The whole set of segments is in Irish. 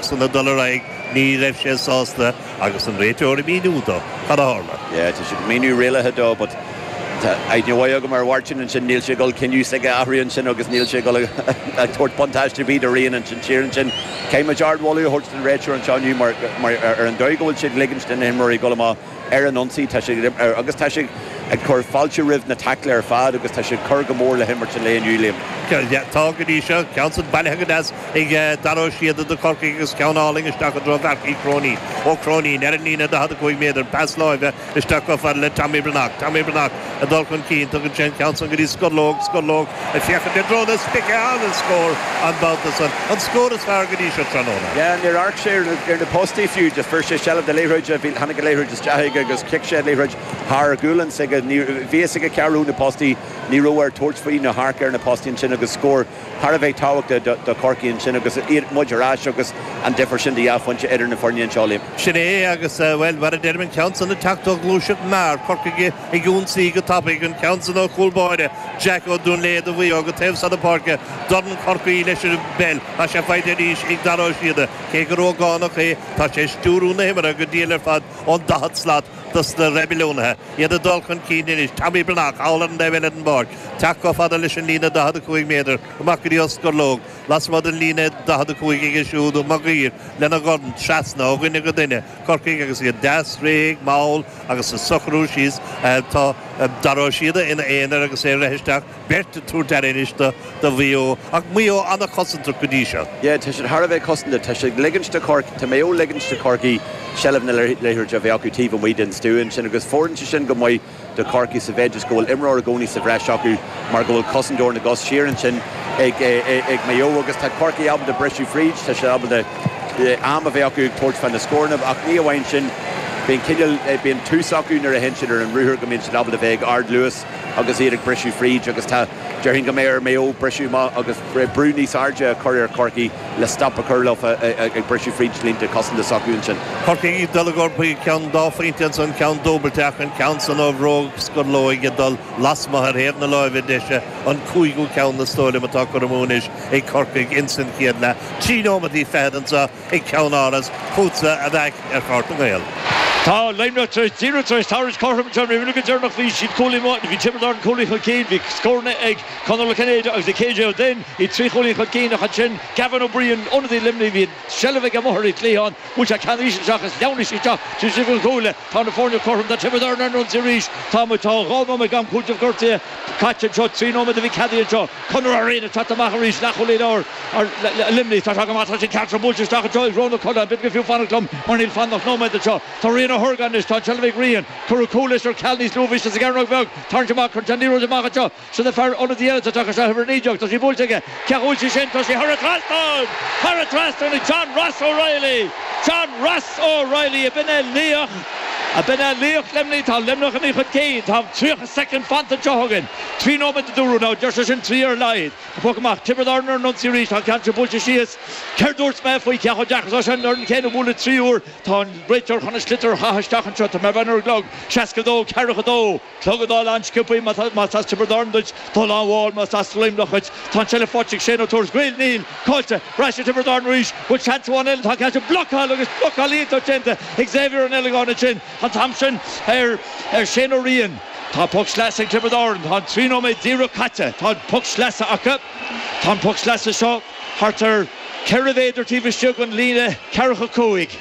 sula dul ar aghaidh, ní raibh sé sásta agus an réiteoir ag míniú dó cad a tharla. yeah tá siad ag míniú rialacha dó but tá aithne mhaith agam ar Mháirtín ansin, níl sé ag dul cinneadh s'aige a athrú ansin agus níl sé ag dul a thabhairt buntáiste ar bith do Rian ansin siar ansin. Caithfimid ard-mholadh a thabhairt don réiteoir anseo inniu mar ar an dóigh go bhfuil siad ag ligint do na himreoirí dul amach, ar an ionsaí, tá siad agus tá siad ag cur fáilte roimh na taiclí ar fad agus tá siad ag cur go mór le himirt an lae inniu, Liam. Tá, go dtí seo, ceann san bailithe go deas ag Dara Ó Síoda do Chorcaigh agus ceann álainn isteach i dtreo Mharc Uí Chróinín. Ó Cróinín ar an líne, 45 méadar, pas láimhe isteach chomh fada le Tommy Breathnach. Tommy Breathnach. ag dul chun cinn. Tugann sé an ceann san go dtí Scurlóg, Scurlóg ag féachaint i dtreo na spící, ana-scór an babhta san, an scór is fearr go dtí seo tráthnóna. Yeah, níor amharc sé ar na postaí fiú, just fuair sé seilbh de liathróid, tháinig an liathróid isteach aige agus chic sé an liathróid thar a ghualainn s'aige, bhí a fhios aige cá raibh na postaí, ní raibh air tabhairt faoi nó amharc ar na postaí ansin agus scór. thar a bheith tábhachtach do Chorcaigh ansin agus iad, muid ar ais agus an difear sin de dhá phointe idir na foirne anseo, Liam. Sin é agus, bhuel, mar a deirim, an ceann san ag teacht ó ghluaiseacht mear, Corcaigh ag ionsaí go tapaidh, an ceann san ó chúl báire, Jack Ó Duinnléibhe ó Mhaigh Eo go taobh seo na páirce, dorn curtha leis an bpeil, tá sé faighte arís ag Dara Ó Síoda, cé gur ógánach é, tá sé ag stiúrú na himeartha go diail ar fad ón daichead slat dos na reibiliúnaithe, iad ag dul chun cinn anois, Tommy Breathnach thall ar an taobh eile den bpáirc, Teacht chomh fada leis an líne 45 méadar, amach go dtí Scurlóg, lasmuigh den líne 45 aige siúd Mag Uidhir lena dhorn trasna ó dhuine go duine, Corcaigh agus iad deas, réidh, mall agus iad ag socrú síos, tá Dara Ó Síoda ina aonar agus é rite isteach, beirt ag tabhairt aire anois do Mhaigh Eo. Ach Maigh Eo an-chosantach go dtí seo. Yeah, tá siad thar a bheith cosantach, tá siad ag ligint do Chorcaigh, tá Maigh Eo ag ligint do Chorcaigh seilbh na liathróide a bheith acu taobh amuigh den stua ansin agus fóireann sé sin go maith. do Chorcaigh sa mhéid is go bhfuil imreoir i gcónaí sa bhreis acu mar go bhfuil cosantóir na gcos siar ansin ag Maigh Eo agus tá Corcaigh ábalta briseadh fríd, tá siad ábalta am a bheith acu ag tabhairt faoi na scóranna ach ní amháin sin, bíonn cineál, bíonn tús acu nuair a théann siad ar an ruathar go mbíonn siad ábalta bheith ag ardluas agus iad ag briseadh fríd agus tá. Déarfainn go mbeidh ar Mhaigh Eo briseadh amach agus brú níos airde a chur ar Chorcaigh le stop a chur leofa ag briseadh fríd línte cosanta s'acu ansin. Corcaigh ag dul ag lorg, ceann dá phointe ansan, ceann dúbailte ach an ceann san ó bhróg Scurlóig ag dul lasmuigh ar thaobh na láimhe deise, an cúigiú ceann is dóigh liom atá curtha amú anois ag Corcaigh insan chéad leath. Trí nóimeataí fichead anseo. ag ceann-áras fútsa a Mhac ar Pháirc na nGael. Tá Luimneach díreach tar éis tarraingt cothrom John Rí Mhíle go deireanach bhí siad cúilín amuigh bhí Tiobraid Árann cúilín chun cinn bhí scóranna ag Conor Ó Cinnéide agus ag KJ Ó Duinn iad trí chúilín chun cinn ach ansin Gavin Ó Briain ionadaí Luimnigh bhí an seilbh aige amuigh ar an chliathán bhuail sé ceann isteach is shleamhnaigh sé isteach trí chéad an chúile tá na foirne cothrom tá Tiobraid Árann ar an ionsaí arís tá muid tá dhá nóiméad den am cúiteamh gortaithe Caite anseo, trí nóiméad a bhí ceadaithe anseo. Conor Ó Riain ag teacht amach arís, leathchúlaí láir Luimnigh. Tá sé go maith, tá sé ceart seo buailte isteach anseo i dtreo na coda, an bhféadfadh go fiú fanacht liom mar níl fanta ach nóiméad anseo. Tá Rian Ó hArgáin anois, tá an tseilbh ag Rian. Cuireadh cúl leis ar ceal níos luaithe, bhí sé sa gcearnóg bheag. Tarraingt amach, cuireann sé an liathróid amach anseo. Sin an fear ionaid eile atá tagtha isteach, uimhir 19. Tá sí buailte aige. Cá bhfuil sí sin, tá sí thar an trasnán! Thar an trasnán ag John Ross O'Reilly! John Ross O'Reilly, ab in é laoch, ab in é laoch Luimnigh, tá Luimneach aon chun cinn, tá tríocha soicind fanta anseo againn, trí nóiméad a dúradh, ná deir sé sin, trí ar a laghad, an poc amach, Tiobraid Árann ar an ionsaí arís, tá an ceann sin buailte síos, céard dúirt mé faoi cé chomh deacair is atá sé an fhoireann chéanna a bhualadh trí huaire, tá an réiteoir chun an sliotar a chaitheamh isteach anseo, tá mé ag breathnú ar an gclog, seasca a dó, ceathracha a dó. Clog ag dul an-sciobtha más as Tiobraid Árann duit, ag dul an-mhall más as Luimneach dhuit, tá an tseilbh faighte ag Shane Ó Tuairisc, an bhfuil, níl, caillte, ar ais ag Tiobraid Árann arís, bhfuil seans amháin eile, tá caillte, blocáil agus blocáil iontach déanta ag Xavier Ó Niallagáin ansin, an t-am sin ar, ar Shane Ó Riain. Tá poc sleasa ag Tiobraid Árann, tá an trí nóiméad díreach caite, tá an poc sleasa acu, tá an poc sleasa seo thart ar ceithre mhéadar taobh istigh den líne ceathracha cúig,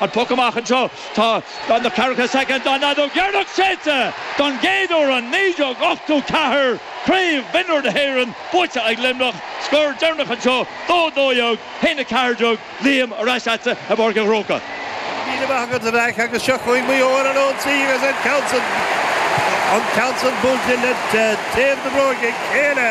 An poc amach anseo, tá na ceathracha soicind tá an fheadóg dheireanach séidte! Don gcéad uair ó 1984, craobh mionúr na hÉireann buaite ag Luimneach, scór deireanach anseo, dó a dó dhéag, haon a ceathair déag, Liam, ar ais leatsa i bPáirc an Chrócaigh. Go raibh míle maith agat, a Mhac, agus seo chugainn Maigh Eo ar an ionsaí agus an ceann san, an ceann san buailte le taobh na bróige clé.